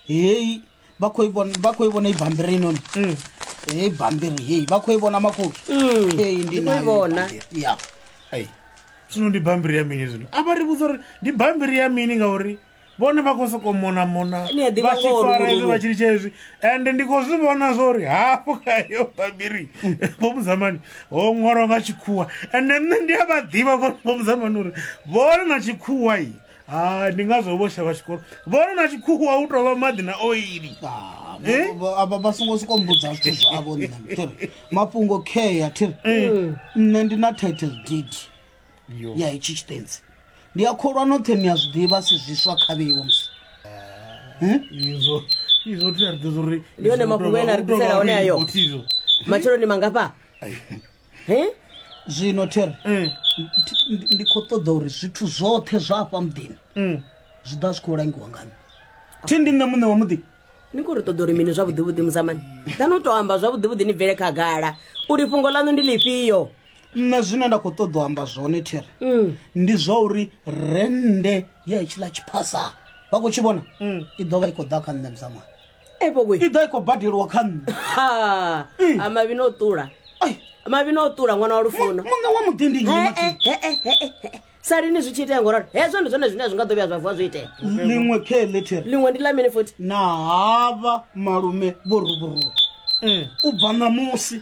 heyi vha khou i vhona vha khou i vhona ibambiri inoni Mm. heyi bambiri heyi vha khou i vhona makhulu Mm, heyi ndi ndi khou i nayo vhona. ibambiri. ya Hey. zwino ndi bambiri ya mini zwino a vha ri vhudza uri ndi bambiri ya mini ngauri vhone vha khou sokou mona mona Ni a ḓivha vha tshi ngoho fara luvhilo. hezwi vha tshi litsha hezwi ende ndi khou zwi vhona zwo uri hafho khayo bambiri vhomudzamani ho ṅwalwa nga tshikhuwa ende nṋe ndi a vha ḓivha vhomudzamani uri vhone na tshikhuwa i hai ndi ngazwo vho shavha tshikolo vhona na tshikhuwa u tovha maḓi na oili Ah, Eh? vho- vho- avha vha songo siko mbudza zwithu zwavho nṋe thiri mafhungo care thiri Eh. nṋe ndi na title deed Yo. ya itshi tshitenzi ndi a kholwa noṱhe ni a zwi ḓivha si zwiswa khavheiwo musi izwo izwo tea ri ḓo zwo ri Ndi one mafhungo ene a ri ḓisela one ayo. matshelo ni mangafha he zwino there mm. ndi khou ṱoḓa uri zwithu zwoṱhe zwa afha muḓini mm. zwi ḓa zwi khou langiwa ngani thi ndi nṋe muṋe wa muḓi ni khou ri ṱoḓa uri mini zwavhuḓivhuḓi muzamani ḓani u tou amba zwavhuḓivhuḓi ni bvele khagala uri fhungo ḽaṋu ndi ḽifhio nṋe zwine nda khou ṱoḓa u amba zwone there mm. ndi zwa uri rennde ya hetshila tshiphasa vha khou tshi vhona i ḓo vha i khou ḓa kha nṋe muzamani evo we i ḓa i khou badeliwa kha nṋe Ha, Mm. a mavhi no ṱula Ai, mavhi no ṱula ṅwana wa lufuno muṋe wa muḓi ndi nnyi Eh, Mathi? eh, eh, eh, eh, eh, eh. sa lini zwi tshi itea ngoralo hezwo ndi zwone zwine zwi nga ḓo vhuya zwa vuwa zwo itea ḽiṅwe khe letere ḽiṅwe ndi ḽa mini futhi na havha malume vho ruburuwa u bva ṋamusi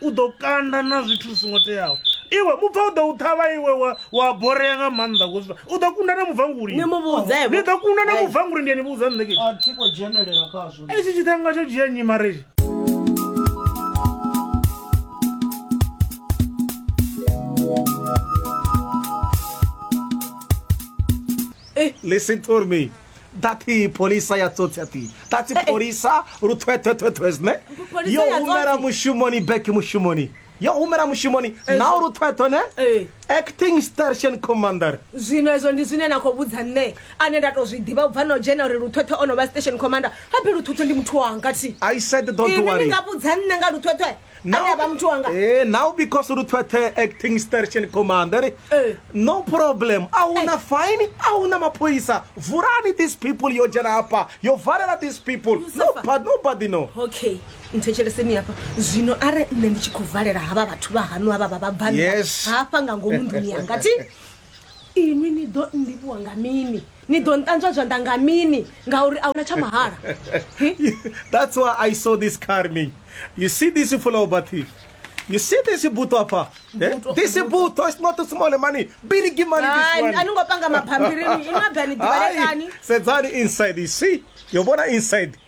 u ḓo kanda na zwithu zwi songo teaho iwe mubva u ḓo u ṱhavha iwe wa borea nga maanḓa kuzwa u ḓo kunda na mubvanguli ni ḓo kunda na mubvanguli ndi ani vhudza nṋe hetshi tshithanga tsho dzhia nyi mareji eh, Listen to me. dati polisa ya tsotsi ati dati polisa luthwethwethwethwe zwine Polisa yo ya humela tsotsi. mushumoni back mushumoni yo humela mushumoni nao luthwethwe ne Eh. acting station commander zwino ezwo ndi zwine na khou vhudza nṋe ane nda tou zwi ḓivha u bva na u dzhena uri luthwethwe o no vha station commander habe luthwethwe ndi muthu wanga thi i said don't ini ni worry nga vhudza nṋe nga luthwethwe Now, Aya ba mtu wanga. Eh, now because Ruthwete acting station commander, Eh. no problem. Auna Eh. fine, auna mapoisa. Vurani these people yo jana hapa. Yo varela these people. No, Mustafa. but nobody know. okay nthetsheleseni hafha zwino are nṋe ndi tshi khou valela havha vhathu vha hanu havha vha vhabannda Yes. hafha nga ngomu nḓuni yanga thi inwi ni ḓo nndivhuwa nga mini ni ḓo nṱanzwa zwanḓa nga mini ngauri a huna tsha mahala that's why i saw this carming you see this fulaobathi You see this buto apa? Eh? This buto is not a small money. Big money this one. Ani ngopanga maphambirini, imabani dibalekani. Sedzani inside, you see? Yobona inside.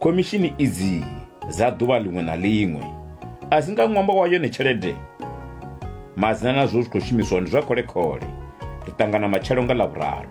Khomishini idzi dza ḓuvha ḽiṅwe na ḽiṅwe a dzi nga ṅwambo wa yone tshelede. Madzina na zwo zwi khou shumiswa ndi zwa khole-khole. Ri ṱangana matshelo nga Ḽavhuraru.